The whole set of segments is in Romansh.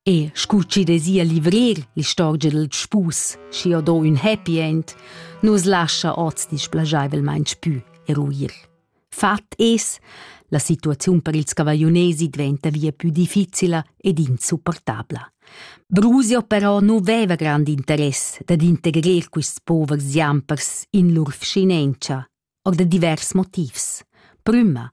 E scu chi dezia livrir l'istorgia dal spus, schi ho do ün happy end, nu's lascha hoz displaschaivelmaing pü eruir. Fat es, la situaziun per ils cavagliunesi dvainta via pü difficila ed insupportabla. Brusio però nu veva grand interess dad integrer quists povers jampers in lur vschinentscha og da divers motivs. Prüma,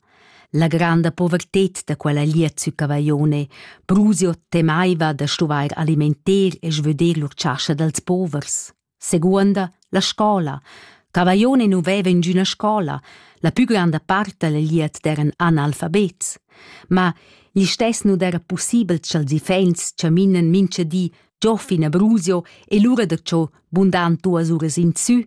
la granda povertet da quella lia zucavaione Brusio temaiva da stuvair alimenter e svöder lur chascha dals povers. Seconda, la scola. Cavaione nu veva ingüna scola, la pü granda part da la liet d'eran analfabets. Ma listess nu d'era possibel cha'ls iffaints chaminan mincha di Giofin a Brusio e lura da cho bundan duas uras insü,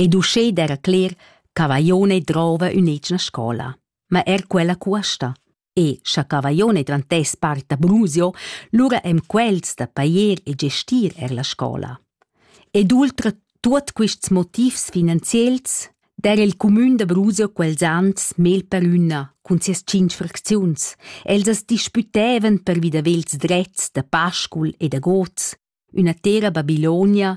Ed uschè d'eira cler cha Vajone drouva ün'etgna scoula. Ma eir quella cuosta. E scha Cavajone drantess part da Brusio, lura hem quels da pajer e gestir eir la scoula. Ed ultra tuot quists motivs finanziels d'eira il cumün da Brusio quels ans mel per üna cun sias tschinch fracziuns. Els as dispütevan pervi da vels drets da Pascul e da gods, üna tera Babilonia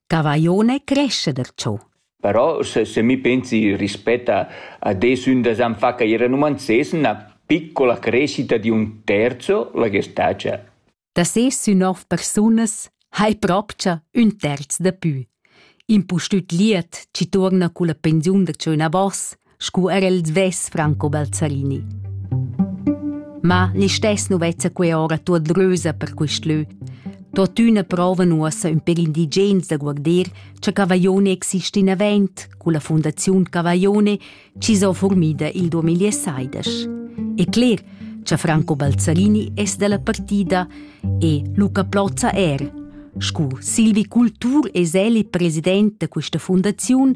Cavaione crescha da tschò. Però se, se mi pensi rispett a, a de sün da san fa cair en uman ses üna piccola crescita di un terzo la gestagia. Da ses sün nov persunas hai propcha ün terz da pü. Impustüt liet, ci tuorna culla pensiun da tschöna bos, scu er el svess Franco Balzarini. Ma listess nu vezza que ora tuot drösa per quist lö. Tuottüna provan uossa ün per indigens da guarder cha Cavaglione exist in avent culla Fondaziun Cavaglione chi s'ho formida il 2016. E cler cha Franco Balzarini es dalla partida e Luca Plozza er, scu Silvi Cultur es el il president da questa fundaziun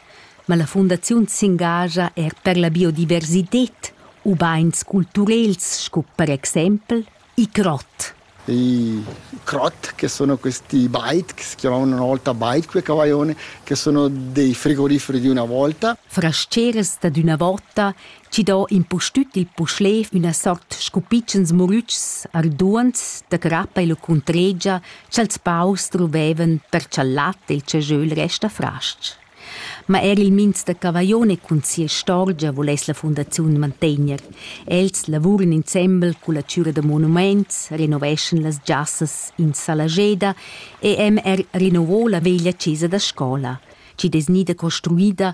ma la fundaziun s'engascha er per la biodiversitad ubain culturels sco per exempel il crot. I crot, che sono questi bikes che hanno una volta bike quei cavaione, che sono dei frigoriferi di una volta. Frasceras dad üna vota chi do impustüt il puschlev üna sort scupitschens murütschs arduonds da crappa e lucundregia cha'ls paurs druvevan per cha'l lat e il cajöl resta fras-ch. Ma eir il minz da Cavaglione cun sia istorgia vuless la fundaziun mantegner. Els lavuran insembel culla chüra da monumaints, renoveschan las giassas in Salageda e han er rinnovò la veglia chesa da scola, chi'd es gnida construida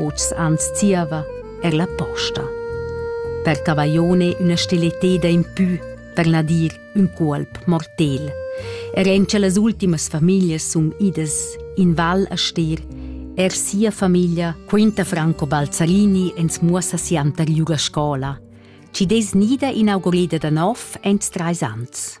Oz ans zieva er la posta. Per Cavaione üna stileteda in pü, per Nadir ün cuolp mortel. Er en che las ultimas famiglias sun idas in val a stir, er sia famiglia quinta Franco Balzarini ins muossa sianter giù la scola. Ci des nida inaugurida da nov ents treis ans.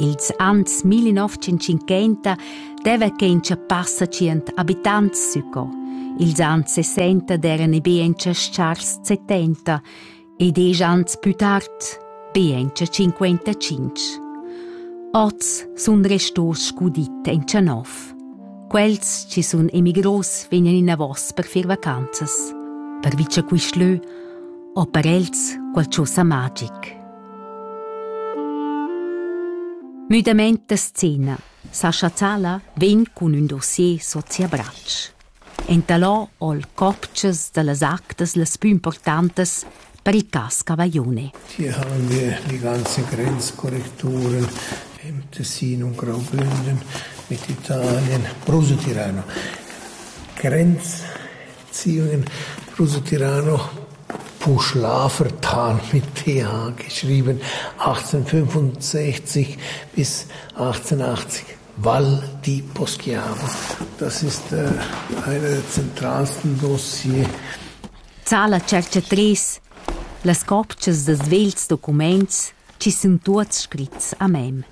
Ils ans 1950 deva che in passa tschient abitants sco. Ils ans 60 eran be en chars 70 e diesch ans più tard be en 55. Oz sun restos scudit en Tschanov. Quels ci sun emigros vegnan inavos per fir vacanzas. Per vice quist lö o per els qualchosa magic. Müdamaint da scena. Sascha Zala vegn cun ün dossier sot sia bratsch. Entalò ho'l copchas da las actas las pü importantas per il cas Cavaglione. Tie han wir die ganze Grenzkorrekturen im Tessin und Graubünden mit Italien, Bruse Tirano. Grenz Ziun Rusetirano Puschlafer Talmiteag geschrieben, 1865 bis 1880 Val di Poschiavo. Das ist äh, eine der zentralsten Dossier. Zala cerca tres las copchas da svelts documents chi sun tuots scrits a mem.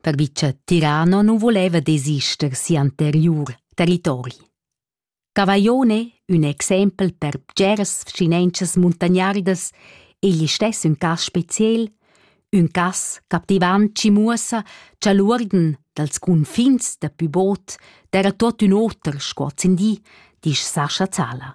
pervi cha Tirano nu voleva desister si'anteriur territori. Cavaillone, ün exempel per bgeras vschinenchas muntagnardas, egl istess ün cas speciel, ün cas captivant chi muossa cha l'uorden dals cunfins da pü bod d'eira tuot ün oter sco ozzendi, disch Sascha Zala.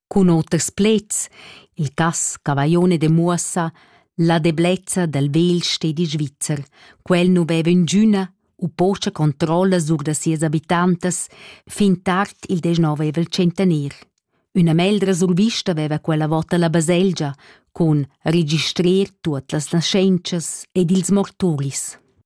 Cun oters pleds, il cass Cavaglione demuossa la deblezza dal vegl stedi svizzer. Quel nu veva ingüna u pocha controlla sur da sias abitantas fin tard il deznovevel centener. Üna meldra survista veva quella vota la baselgia cun registrer tuot las naschentschas ed ils morturis.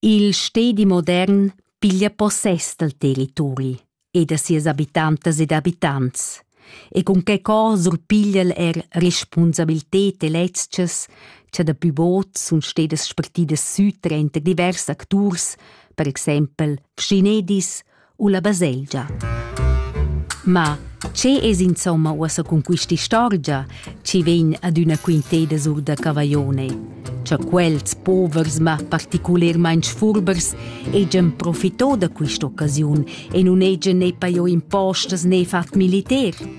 Il stedi modern piglia possess dal territori e da sias habitantas ed abitants e cun quei co surpiglia'l er respunsabilted e lezchas cha daplü bod sun stedas spartidas sü tranter divers acturs, per exaimpel schinedis u la baselgia. Ma che es insomma uossa cun quist'istorgia chi vegn adüna quinteda sur da Cavaione? Cha quels povers ma particulermaing sfurbers hegian profitò da quist'occasiun e nun hegian ne pajo impostas ne fat militar?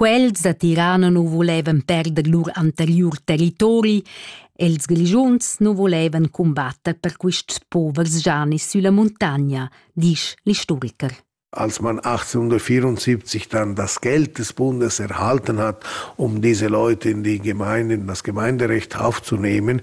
Quels da Tirana nu volevan perder lur anteriur territori, els Grischuns nu volevan cumbatter per quists povers Janis sülla muntagna, disch l'istoriker. Als man 1874 dann das Geld des Bundes erhalten hat, um diese Leute in die Gemeinden, das Gemeinderecht aufzunehmen,